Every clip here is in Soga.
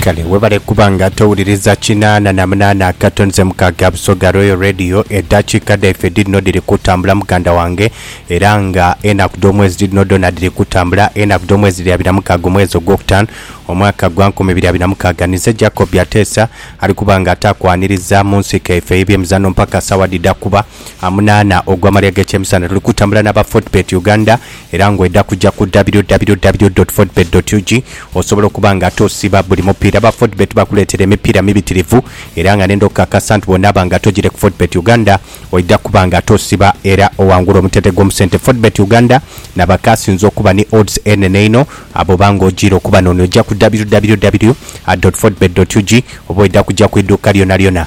Kale webale kuba nga towuliriza kinaana na munaana akatonze mukaaga Busoga Royal Radio. Edhakiika dhaife dhirino dhiri kutambula muganda wange era nga enaku dh'omwezi dhirino dhoona dhiri kutambula. Enaku dh'omwezi dhiri abiri na mukaaga omwezi ogwokutaanu omwaka gwa nkumi ibiri abiri na mukaaga. Nize Jacob Ateesa ali kuba nga ataakwaniriza mu nsiko yaife ey'ebyemizano mpaka sawa dhidha kuba. amunaana ogw'amalya g'ekyemisana. Tuli kutambula n'aba Fodbet Uganda era ng'oidha kuja ku www.fodbet.ug osobola okuba nga ate osiiba buli mupiira. Aba Fodbet bakuleetera emipiira mibitirivu era nga n'enda okukakasa nti bw'onaaba nga tojire ku Fodbet Uganda oidha kuba nga ate osiiba era owangula omutendhe gw'omu sente. Fodbet Uganda n'abakaasinze okuba ni odds enhenhe einho abo oba nga ojiire okuba n'onoja ku www.fodbet.ug oba oidha kuja ku idhuuka lyonalyona.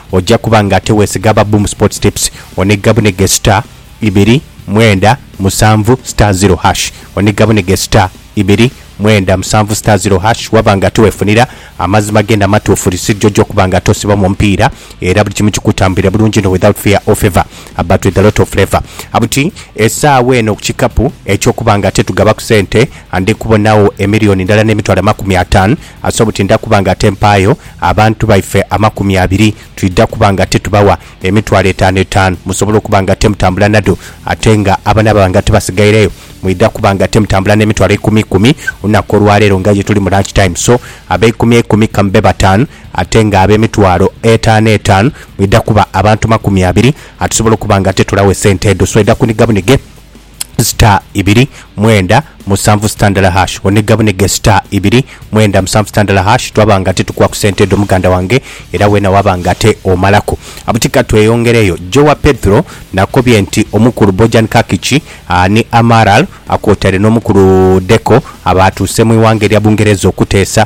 oja kuba nga ate wesiga aba Boom Sports Tips oniga bunige star ibiri mwenda musanvu star zero hash oniga bunige star ibiri mwenda musanvu star zero hash waba nga ate wefunira amazima genda amatuufu receipt joja okuba nga ate osibamu omupiira era buli kimu kikutambulira bulungi inho without fear or favour but with a lot of flavour buti esaawa eno ku kikapu ekyokuba nga ate tugabaku sente ndikubonagho emillion ndala nemitwalo amakumi ataanu Asobola buti nda kuba nga tempaayo abantu baife amakumi abiri, twidha kuba nga titubawa emitwalo etaanu etaanu musobole okuba nga temutambula nadho, ate nga abanaababa nga tibasigaireyo mwidha kuba nga temutambula n'emitwalo ikumi ikumi olunaku olwaleero nga ye tuli mu lunch time. So abeikumi eikumi ka mube bataanu, ate nga ab'emitwalo etaanu etaanu mwidha kuba abantu makumi abiri, atusobola okuba nga titulawo esente edho. So idha kunigabunige. star ibiri mwenda musanvu star ndala hash onega bunege star ibiri mwenda musanvu star ndala hash twaba nga ate tukuwa ku sente edho muganda wange era wena waba nga ate omalaku abuti katweyongereyo Jowa Pedro nakobye nti omukulu Bojan Kakic aa ni Amaral a kwotaire n'omukulu Deco abaatuuse mu ighanga erya Bungereza okuteesa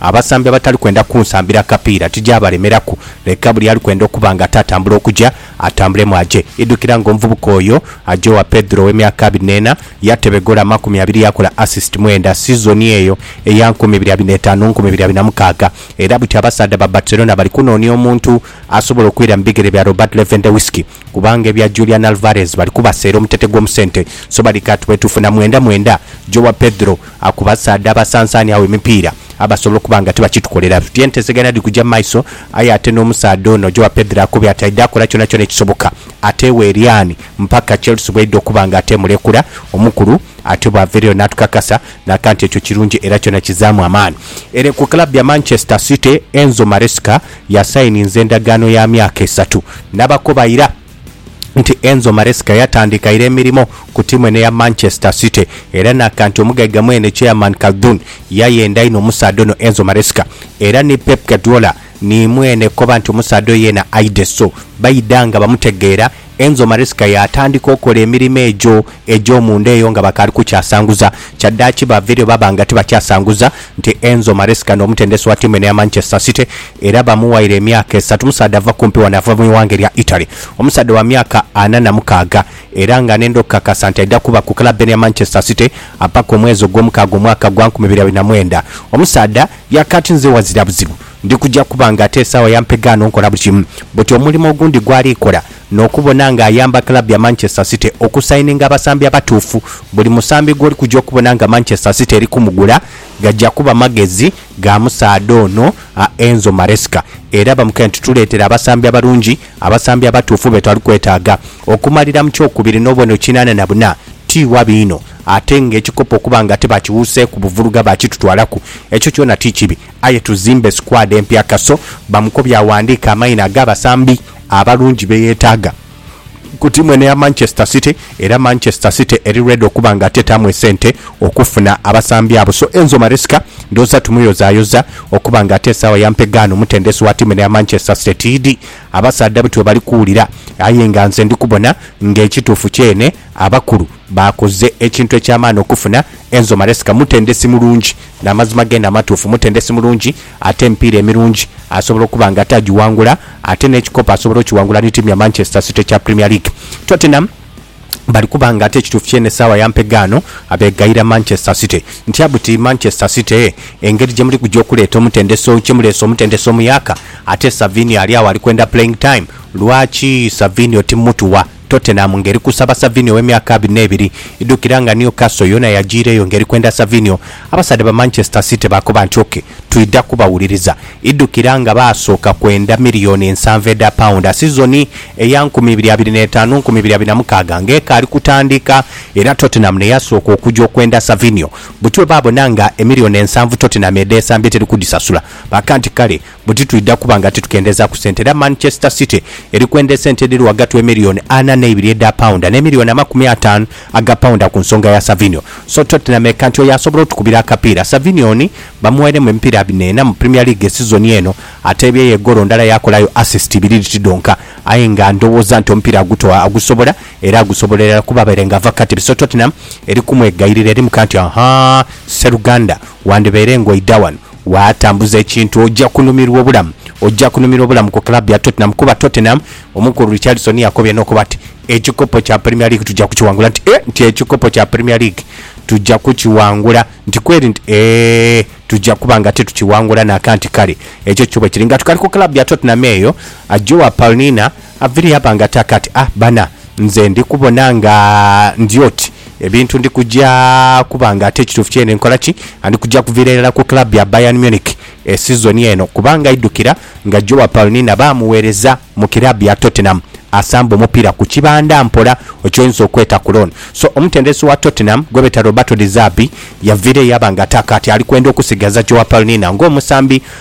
Abasambi abatali kwenda kunsambira kapiira tigyabalemeraku. Leka buli ali kwenda okuba nga atatambula okuja, atambulemu aje. Idhukira ng'omuvubuka oyo aja owa Pedro ow'emyaka abiri n'ena, yatebe goolo amakumi abiri yaakola assist mwenda sizoni eyo eya nkumi ibiri abiri n'etaanu nkumi ibiri abiri na mukaaga. Era buti abasaadha ba Barcelona bali kunoonia omuntu asobola okwira mu bigere bya Robert Lewandowski. Kubanga ebya Julian Alvarez bali kubaseera omutete gw'omu sente, so bali ka tubwetuufu na mwenda mwenda. Joao Pedro akubasaadha abasansaani agho emipiira abasobola okuba nga tibakitukolera. Tuti entesegana dhiri kuja mu maiso, aye ate n'omusaadha ono Joao Pedro akobye ati aidha kola kyonakyona ekisoboka ateewo Eryan mpaka Chelsea bweidha okuba nga ateemuleekula. Omukulu ate bw'avaireyo n'atukakasa n'aka nti ekyo kirungi era kyona kizaamu amaani. Ere ku club ya Manchester City, Enzo Maresca Yasayininze endagaano ya myaka esatu n'abakoba ira nti Enzo Maresca yatandika ira emirimo ku tiimu eno eya Manchester City era n'aka nti omugaiga mwene Chairman Khaldoon yayenda inho omusaadha ono Enzo Maresca era ni Pep Guardiola ni mwene koba nti omusaadha oyo yeena aidhe so baidha nga bamutegeera Enzo Maresca yaatandika okola emirimo egyo egy'omunda eyo nga bakaali kukyasanguza. Kyaddaaki baaviireyo baaba nga tibakyasanguza nti Enzo Maresca n'omutendesi wa ttiimu eno eya Manchester City era bamuwaire emyaka esatu. Musaadha ava kumpi wano, ava mu ighanga erya Italy. Omusaadha wa myaka ana na mukaaga era nga anenda okukakasa nti aidha kuba ku club eno eya Manchester City mpaka omwezi Ogwomukaaga omwaka gwa nkumi ibiri abiri na mwenda. Omusaadha yaakaati nze wazira buzibu. Ndi kuja kuba nga ate esaawa yampe gaano nkola buli kimu. Buti omulimo ogundi gw'ali kola n'okubona nga ayamba club ya Manchester City okusayininga abasambi abatuufu. Buli musambi gw'oli kuja okubona nga Manchester City eri kumugula, gaja kuba magezi ga musaadha ono Enzo Maresca era bamukaire nti tuleetere abasambi abalungi, abasambi abatuufu be twali kwetaaga. Okumalira mu kyokubiri n'obubonero kinaana na buna ti wabi inho ate ng'ekikopo okuba nga tibakiwuuseeku buvuluga baakitutwalaku, ekyo kyona ti kibi. Aye tuzimbe squad empya Kaso bamukobye aghandiike amaina ag'abasambi abalungi be yeetaaga ku tiimu eno eya Manchester City era Manchester City eri ready okuba nga tetaamu esente okufuna abasambi abo so Enzo Maresca ndhooza tumuyozayoza okuba nga ate esaawa ya mpegaano omutendesi wa tiimu eno eya Manchester City tiidhi abasaadha bti webali kuwulira aye nga nze ndi kubona nga ekituufu kyeene abakulu baakoze ekintu eky'amaani okufuna Enzo Maresca mutendesi mulungi N'amazima g'eno amatuufu, mutendesi mulungi ate emipiira emirungi asobola okuba nga atagiwangula ate n'ekikopo asobola okiwangula ni ttiimu ya Manchester City ekya Premier League. Tottenham bali kuba nga ate ekituufu ky'eno essaawa ya mpegaano abeegayira Manchester City. Ntya buti Manchester City engeri gye muli kuja okuleeta omutendesi, gye muleese omutendesi omuyaaka ate Savinho ali agho ali kwenda playing time. Lwaki Savinho timutuwa? Tottenham ng'eri kusaba Savinho ow'emyaka abiri n'ebiri. Idhukira nga Newcastle yoona yajiireyo ng'eri kwenda Savinho, abasaadha ba Manchester City baakoba nti, OK, twidha kubawuliriza. Idhukira nga baasooka kwenda miriyoni nsanvu edha paunda sizoni eya nkumi ibiri abiri n'etaanu nkumi ibiri abiri na mukaaga ng'ekaali kutandika era Tottenham ne yasooka okuja okwenda Savinho. Buti bwe baabona nga emiriyoni ensanvu Tottenham edheesambye teri kudhisasula, baakanti kale, buti twidha kuba nga titukendhezaaku sente era Manchester City eri kwendha esente edhiri ghagati w'emiliyoni ana n'eibiri edha paunda n'emiliyoni amakumi ataanu aga paunda ku nsonga ya Savinho. So Tottenham eka nti oyo asobola otukubira akapiira. Savinho oni bamuwairemu emipiira abiri ena mu Premier League esizoni eno, ateebyeyo egoolo ndala yaakolayo assist ibiri dhiti dhonka aye nga ndhowooza nti omupiira agutoa agusobola era agusobola irala kuba abaire nga ava kukatebe so Tottenham eri kumwegayirira eri mu kanti, Ahaa, sseruganda, Wandibaire nga oidha wano waatambuza ekintu, oja kunumirwa obulamu. Oja kunumirwa obulamu ku club ya Tottenham kuba Tottenham, omukulu Richarlison yakobye n'okuba nti, Ekikopo kya Premier League tuja kukiwangula. Nti, Eeh, nti ekikopo kya Premier League tuja kukiwangula? Nti, Kweri? Nti, Eeh, tuja kuba nga titukiwangula naka. Nti, Kale, ekyo kyo bwe kiri. Nga tukali ku club ya Tottenham eyo, Joao Palhinha Aviri aba nga taka ati, Ah, bana, nze ndi kubona nga ndi oti ebintu ndi kuja kuba nga ate ekituufu kye ndi nkola ki? Ndi kuja kuviira irala ku club ya Bayern Munich e sizoni eno kubanga idhukira nga Joao Palhinha baamuweereza mu kiraabu ya Tottenham asamba omupiira ku kibanda mpola eky'oyinza okweta ku loan. So, omutendesi wa Tottenham gwebeeta Roberto De Zerbi yaviira eyo aba nga taka ati ali kwenda okusigaza Joao Palhinha ng'omusambi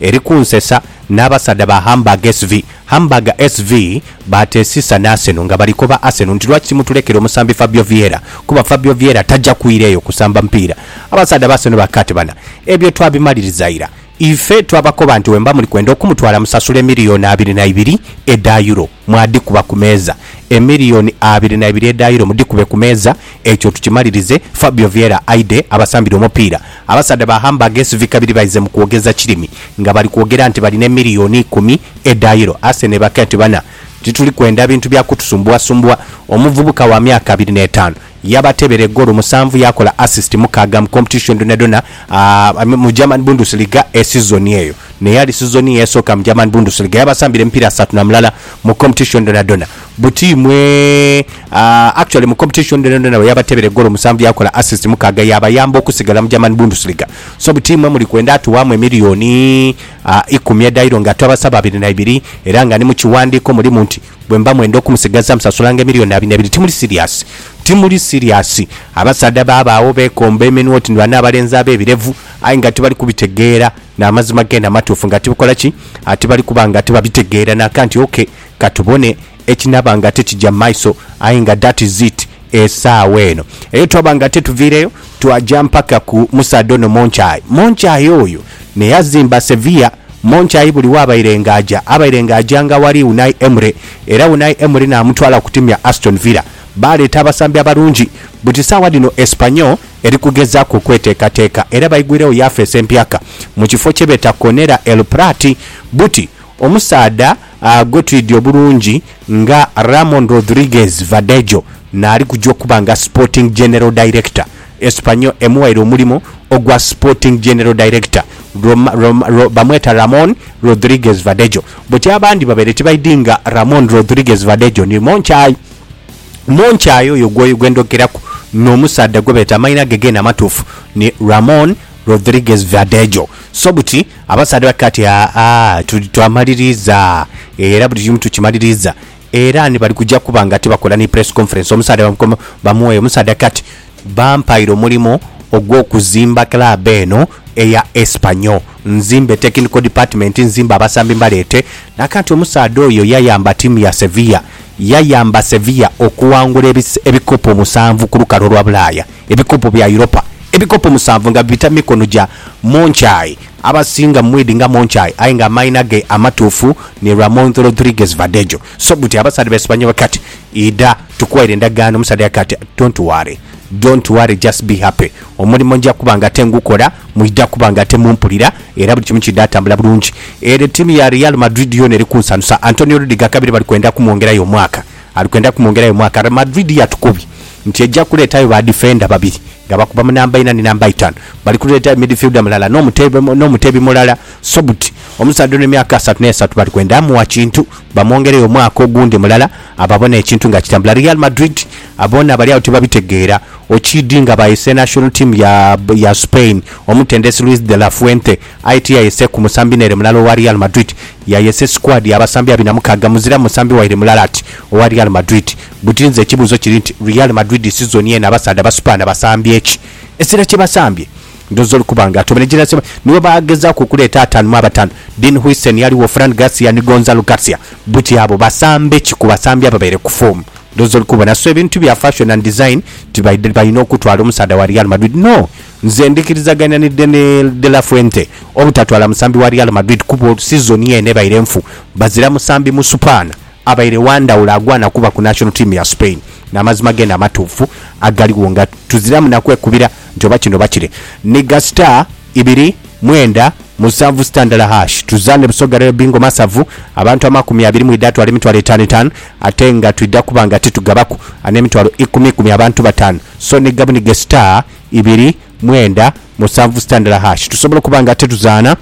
Eri kunsesa n'abasaadha ba Hamburg SV. Hamburg SV baatesisa n'Arsenal nga bali koba Arsenal nti lwaki timutulekera omusambi Fabio Vieira kuba Fabio Vieira taja kwira eyo kusamba mupiira. Abasaadha ba Arsenal bakaatebana, Ebyo twabimaliriza ira. Ife twabakoba nti wemba muli kwenda okumutwala musasule miriyoni abiri na ibiri edha Euro, mwadhikuba ku meeza. Emiriyoni abiri na ibiri edha Euro mudhikube ku meeza. Ekyo tukimalirize, Fabio Vieira aidhe abasambire omupiira. Abasaadha ba Hamburg SV kabiri baize mu kwogeza kirimi nga bali kwogera nti balina emiliyoni ikumi edha Euro. Arsenal ebake nti bana, tituli kwenda bintu bya kutusumbuasumbuwa. Omuvubuka wa myaka abiri n'etaanu yabatebera egoolo musanvu yaakola assist mukaaga mu competition dhonadhona mu German Bundesliga e sizoni eyo n'eyali sizoni ye esooka mu German Bundesliga. Yabasambira emipiira asatu na mulala mu competition dhonadhona. Buti mwe aah actually mu competition dhona dhona bweyabatebere goolo musanvu yakola assist mukaaga yabayamba okusigala mu German Bundesliga so buti mwe muli kwenda atuwaamu emillioni aah ikumi edhairo nga twabasaba abiri na ibiri era nga ni mu kiwandiiko mulimu nti bwemba mwenda okumusigaza musasulanga emillioni abiri na ibiri timuli serious timuli serious abasaadha babaagho bekomba eminwa oti ni bano abalenzi abebirevu aye nga tibali kubitegeera namazima gena amatuufu nga tibikola ki? tibali kuba nga tibabitegeera nakanti ok Ka tubone ekinaaba nga tikija mu maiso, aye nga that is it esaawa eno. Eyo twaba nga tetuviireyo, twaja mpaka ku musaadha ono Monchai. Monchai oyo n'eyazimba Sevilla. Monchai buli waabaire nga aja, abaire nga ajanga aghali Unai Emery, era Unai Emery naamutwala ku tiimu ya Aston Villa. Baaleeta abasambi abalungi. Buti saawa dhino Espanyol eri kugezaaku okweteekateeka era baigwiregho yafeesi empyaka mu kifo kye beeta Conera El Prat. Buti Omusaadha gwe twidhi obulungi nga Ramon Rodriguez Verdejo n'ali kuja okuba nga Sporting General Director, Espanyol emuwaire omulimo ogwa Sporting General Director, bamweta Ramon Rodriguez Verdejo buti abandi babaire tibaidhi nga Ramon Rodriguez Verdejo ni Monchai. Monchai oyo gwe ndhokeraku n'omusaadha gwe beeta amainha ge geene amatuufu ni Ramon Rodriguez Verdejo. So buti. Abasaadha ba Kati, Aa, tuli, twamaliriza, era buli kimu tukimaliriza. Era ni bali kuja kuba nga tibakola ni press conference. Omusaadha bamukoma, bamuweeyo. Omusaadha Kati, Bampaire omulimu ogw'okuzimba club eno eya Espanyol. Nzimbe technical department, nzimbe abasambi mbaleete. Na kati omusaadha oyo yayamba ttiimu ya Sevilla, yayamba Sevilla okuwangula ebikopo musanvu ku lukalu olwa Bulaaya. ebikopo bya Europa, ebikopo musanvu nga bibita mu mikono gya Moncaay. Abasinga mwidhi nga Moncaay aye nga amaina ge amatuufu ni Ramon Rodriguez Verdejo. So buti abasaadha be Sibanyobwa kati idha tukuwaire endagaano. Omusaadha yagamba ati, Don't worry, don't worry just be happy. Omulimo nja kuba nga ate ngukola, mwidha kuba nga ate mumpulira era buli kimu kidha tambula bulungi. Ere tiimu ya Real Madrid yoona eri kunsanusa. Antonio Rudiger kabiri bali kwenda kumwongerayo omwaka. ali kwenda kumwongerayo mwaka. Real Madrid yatukobi nti eja kuleetayo ba difenda babiri nga bakuba mu namba ina ni namba itanu. Bali kuleeta midfielder mulala n'omuteebi mulala Sobti. Omusaadha ono emyaka asatu n'esatu bali kwenda mugha kintu bamwongereyo omwaka ogundi mulala ababone ekintu nga kitambula. Real Madrid boona bali agho tibabitegeera okiidi nga baayese national team ya Spain omutendesi Luis de la Fuente aye tiyayeseeku musambi n'ere mulala owa Real Madrid. Yayesa esikwadi y'abasambi abina mukaaga muzira musambi waire mulala ati owa Real Madrid. Buti nze ekibuuzo kiri nti Real Madrid sizoni eno abasaadha basupaana basambye ki? Esira kye basambye? Ndhooza oli kuba nga atobereire jenerasiyo eba niwo baagezaaku okuleeta ataanu mu abataanu. Dean Huijsen yaligho, Fran Garcia ni Gonzalo Garcia. Buti abo basambe ki ku basambi ababaire ku foomu? Ndhooza oli kubona. So ebintu bya fashion and design tibibaidha balina okutwala omusaadha wa Real Madrid. No! Nze ndikirizagania ni Deni de la Fuente obutatwala musambi wa Real Madrid kuba sizoni eno ebaire nfu, bazira musambi musupaana abaire wa ndhawulo agwana kuba ku national team ya Spain n'amazima geene amatuufu agaligho nga tuziramu na kwekubira nti oba kino oba kire. Nhiga star ibiri mwenda musanvu sita ndala hash tuzaane Busoga Royal Bingo Masavu abantu amakumi abiri mwidha atwala emitwalo etaanu etaanu ate nga twidha kuba nga titugabaku anemitwalo ikumi ikumi abantu bataanu so nhiga bunhige star ibiri, mwenda, musanvu sitandala hash tusobola okuba nga ate tuzaana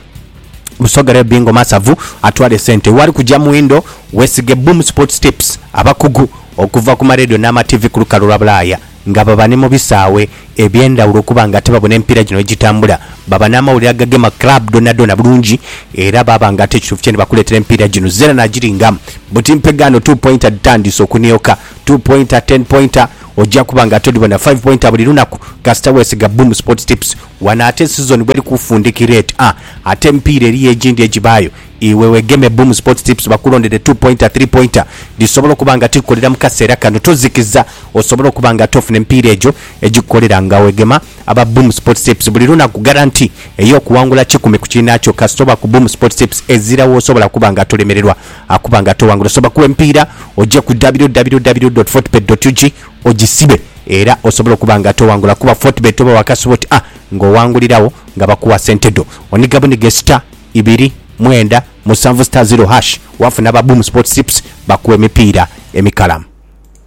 Musoga Real Bingo Masavu atwale sente wali kugya mwindo wesige Boom Sports Tips abakugu okuva ku maledio n'ama TV ku lukalu lwa Bulaaya nga baba ni mu bisaawe eby'endhawulo okuba nga ate babona emipiira gino wegitambula baba n'amawulire agagema club dhonadhona bulungi era baaba nga ate kituufu kyene bakuleetera emipiira gino zena nagiringamu buti mpegaano two pointer dhitandiise okunioka two pointer, ten pointer. Ojja kuba nga toli bona five pointer buli lunaku kasita wesiga Boom Sports Tips wano ate sizoni bweri kufundikira eti a ate emipiira eriyo egindi egibaayo iwe wegeme Boom Sports Tips bakulondere two pointer, three pointer dhisobola okuba nga tikukolera mu kaseera kano tozikiza osobole okuba nga ate ofuna emipiira egyo egikukolera nga wegema aba Boom Sports Tips buli lunaku guarantee ey'okuwangula kikumi ku kiinaakyo kasita oba ku Boom Sports Tips ezira w'osobola kuba nga tolemererwa Akuba nga towangula osobola kuwa empiira oje ku www.fortebet.ug ogisibe era osobole okuba nga towangula kuba Fortebet oba wakasuba oti a nga owanguliragho nga bakuwa sente dho. Oniga bunige star ibiri mwenda musanvu star zero hash wafuna aba Boom Sports Tips bakuwa emipiira emikalamu.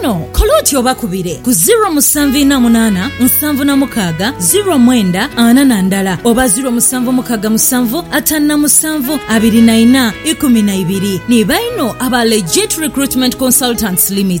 Kano kola oti obakubire ku ziro musanvu ina munana nsanvu na mukaaga ziro mwenda ana na ndala oba ziro musanvu mukaga musanvu atanu na musanvu abiri na ina ikumi na ibiri. Ni baino aba Legit Recruitment Consultants Limited.